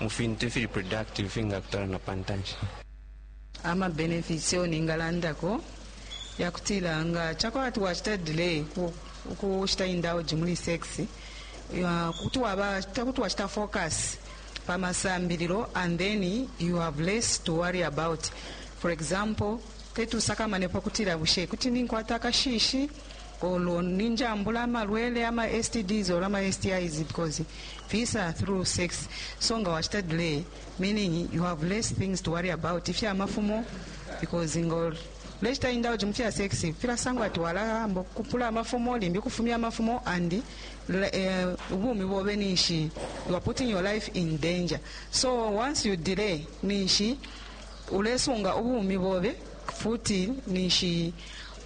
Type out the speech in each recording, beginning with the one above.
mu fintu ifili productive ifingakutwala na pa ntanshi ama benefits yo ningalandako yakutila nga chakwala ati wachita delay ku- ukushita indulge muli sex ya- kuti waba kuti wachita focus pa masambililo and then you have less to worry about for example teti usakamanepo kutila bushe kuti ninkwata akashishi olo ninjambula amalwele ama stds or ama stis because visa through sex so nga wachita delay meaning you have less things to worry about ifya mafumo because ngol lechita indulge mu fya sex filasangwa ati walahamba kupula amafumo limbi kufumya amafumo and uh, ubumi bobe ninshi you are putting your life in danger so once you delay ninshi ulesunga ubumi bobe futi ninshi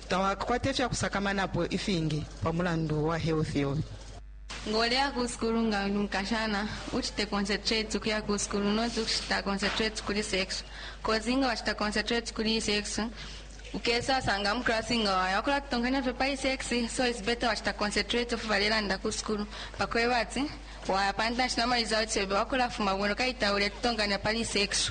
Tawakakwate ifya kusakamanapo ifingi pa mulandu wa health yobe. Nga uleya ku sukulu nga uli mukashana uchite concentrate ukuya ku sukulu not ukuchita concentrate kuli sex cause nga wachita concentrate kuli sex ukesa sanga mu class nga waya wakula kutonkanya fye pa sex so it's better wachita concentrate ofu balelanda ku sukulu pakweba ati waya pantanshi na ma results yobe wakula fuma bwino kaita ule tutonkanya pali sex